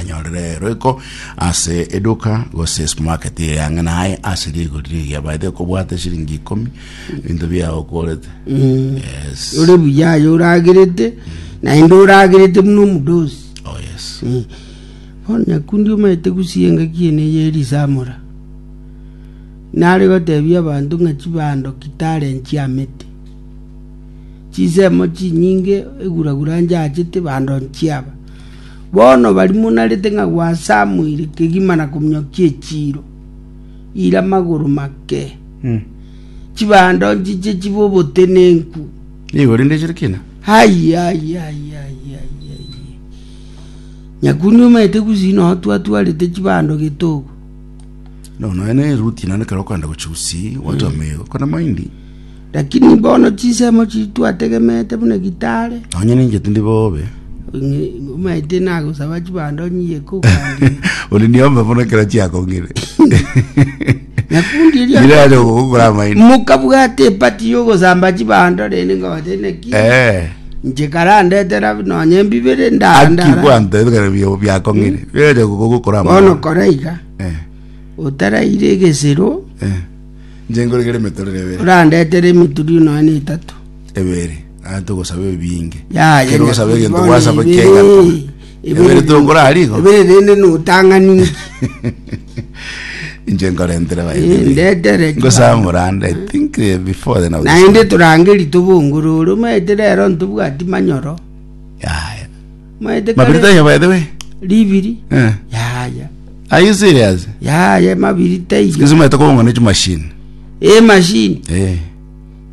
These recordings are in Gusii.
anyorere roiko ase eduka gose supermarket eye ang'e naye ase rigori rigiya baete okobwate shilingi ikomi binto biao okorete yes ore buya aye oragerete naende oragerete buna omudosi oh yes Eh, bono nyakundi omaete gusia engaki ene yerisamora nare gotebia abanto ng'a chibando kitare nchiamete chisemo chinyinge eguragura nchachete bando nchiaba Bono barimonarete ng'a gwasamuire kegima na kominyokia echiiro, ira magoro make, chibando nchiche chibe obotenenku. Nigo rende chire kina. Ai, ai, ai, ai, ai, ai. Nyakundi omanyete gusii noo twatwarete chibando getogo. No, naye ne Ruti nane kero okogenda gochia gusii, gwancha omeigo, kona mahindi. Lakini bono chinsemo chitwategemete buna gitare. Onye ninche tindi bobe. Omanyete nagosaba chibando onye iye kokandire. Oli niombe mono ekero chiakong'ire. Nakundi erio Ira aja gokokora amaino. mokabwata epati yogosamba chibando rende ngote neki Eh. nche karandetera nonye mbibere Aki ndandara kwanta ebikare bio biakong'ire. Biraja gokokora bono amaino. kora iga Eh. otaraire egesero Eh. Inche nkoregere emetorero ebere. Orandetere emituri nonya na etato. Ebere. Naye togosaba ebinge. Yaya, Ekero osaba egento nyakubono gwasaba ebere, ki'egato. ebere Ebere tokorara igo. Ebere rende notang'aninki. Inche nkorentere Eh, baibili. ndetere ki Ngosaba bande. morande, I think eh, before then I was- naende torangeri tobongorore omanyete rero ntobwati manyoro Yaya. Maete kare Mabirita ya by the way. ribiri Eh. yaya Are you serious? yaya mabirita iga Sikuzi maete kobongwa ne chimashini. emashini Eh.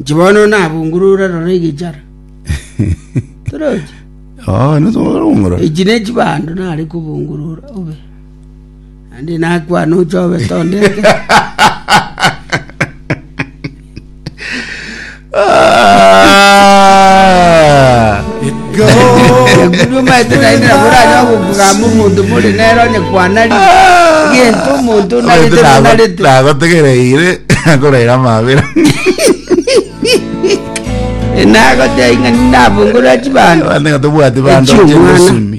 nchi bono nabungurure rora egichara torochi Oh, no so ngoro. echi ne chibando nare kobungurura obe Naende nakwane oche obe tondete. Ah! Ekuri omaete naende nabo oranye ogokugamba omonto more nere onye kwanari. Gento omonto onarete nonarete. nagotegereire akoraira amabera Nagotebi ng'a ninabongorera chibando. abande nga tobwati bando Echi omwana. chegosumi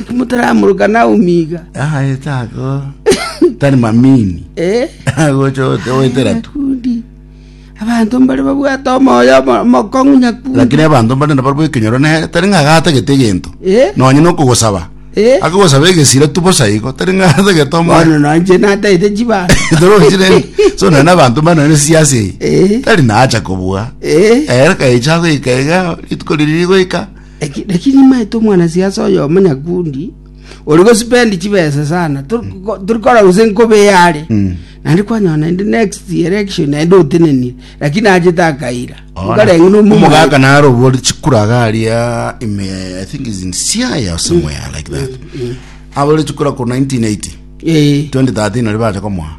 Inki motaramoroka Naomi iga? Aete ako tari mamini. Eh? Agocha ote oetera tu. Nakundi. Abanto mbare babwate omoyo omo- omokong'u nyakundi. Lakini abanto mbare nabo barabwo ekenyoro nere tari ng'a agatagete egento. Eh? Nonye nokogosaba. Eh? Akogosaba egesira tu bosa igo tari ng'a agatagete omoyo. Bono nonche natagete chibando. Torochire. So none abanto mbare none siasi eye. Eh? Tari nacha kobua. Eh? Ere kaicha goika iga rituko riri rigoika. Eki naki nimaete omwanasiasa oyo omonyakundi ori gosipendi chibesa sana Tor- ko- tori kora gose nkobe yare Mm. naende kwanyora naende next election naende otenenire lakini achete akaira nkarenge omogaka narobori chikuraga aria ime i think is in siaya or somewhere like that abore chikura ko 1980 ee 2013 ori bacha komoa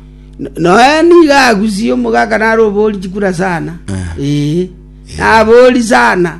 noe niga agusie omogaka narobori chikura sana Eh. ee nabori sana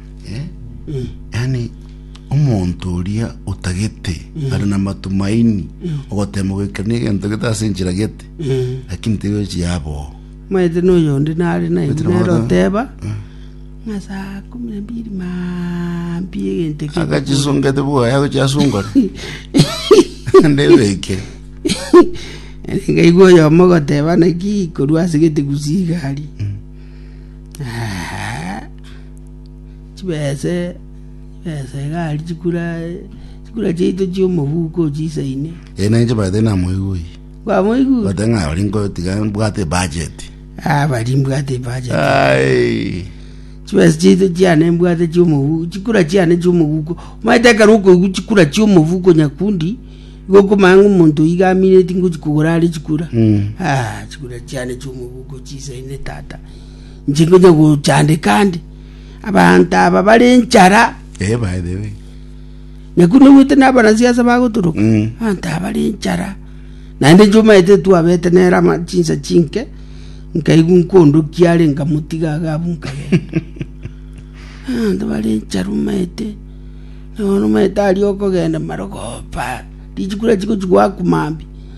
Eh? yaani omonto oria otagete ari na matumaini ogotema goikania egento gete ase enchera gete Eh, lakini tegochi yaboo maete noyonde nare naye Maete nabo- nere oteba ng'a saa kumi na mbili mampi egente keko agachisungete bwaya gochiasungore ndebeke ngaigwa oyomo goteba naki korwa asegete gusia igari Ah, chibese, chibese egari, chikura, chikura chiaito chi'omobuko chisaine. Eh, nanye chibaete namoigui. Kwamoigure? Bate ng'a ori nkotiga mbwate budget. Ah, bari mbwate budget. Ai. chibesa chiaito chiane mbwate chiomobuko chikura chiane chiomobuko omanyete ekero okoigwa chikura chiomobuko nyakundi igo okomanya ng'a omonto iga amineti ngochi kogora are chikura Mm. Ah, chikura chiane chiomobuko chisaine tata inche ngocha gochandeka ande, abanto aba bare enchara, Eh, by the way. nyaku nobwete nabarasiasa bagotoroka Mm. abanto aba bare enchara naende inche omaete twabete nere ama chinsa chinke nkaigwa nkondokia are nkamotiga iga abwo nkagenda abanto bare enchara omaete bono omaete aria okogenda marogoba richiko rachi gochi goaku mambia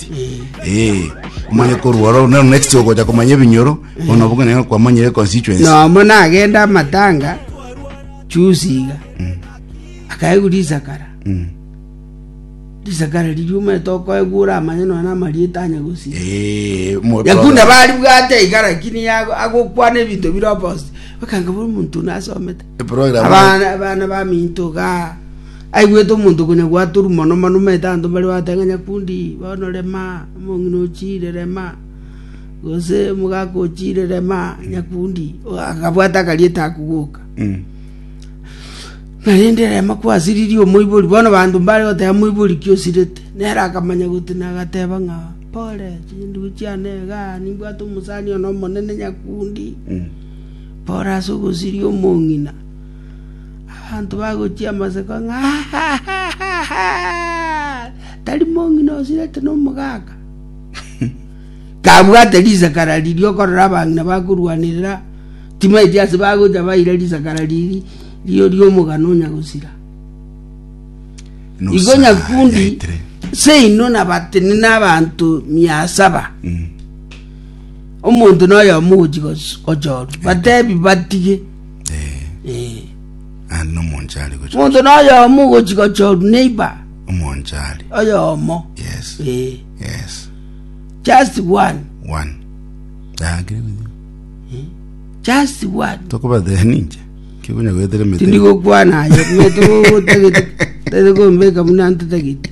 ati eh omanye korwa oro nero next ogocha komanya ebinyoro bono obuge nero kwamanyire constituency nomo nagende amatanga chusi iga akaegwa risakara Mm. risakara ririuma tokoegura amanye none amarieta anya gosira eh mo- yakunda bari bwate iga lakini yago- agokwana ebinto bire opposite bakanga buri omonto nasomete Eprogram Abana abana baminto iga aigwete omonto konya gwatorwa mono mono omanyete abanto mbare bagoteba ng'a nyakundi bono rema omong'ina ochiire rema gose omogaka ochiire rema nyakundi o- akabwata akarieta ako goka Mm. narende rema kwasiririe omoibori bono abanto mbare goteba moibori ki osirete nere akamanya goti nagateba ng'a pore chindugu chiane igaa nimbwate omosani one omonene nyakundi Mm. “Bora ase ogosiria omong'ina, abanto bagochia amaseko ng'a, Tari mong'ina osirete nomogaka, kabwate risakara riria okorora abang'ina bakorwanerera? Timaeti ase bagocha baira risakara riria riria oria omogano onya gosira? Igo nyakundi seino nabatenene abanto mia saba. Omonto noyomo ogochia gochorwa, batebi batige. Eh. Ande nomonche are gochia. Omonto noyomo ogochia gochorwa neighbor. Omonche are. Oyomo. Yes. Eh. Yes. Just one. One. Dagire gochia. Just one. Tokobatehe ninche. Kikunya goetera mete. Tindigokwana ayo. Meto gogotagete. Tete gombeka muna ntetagete.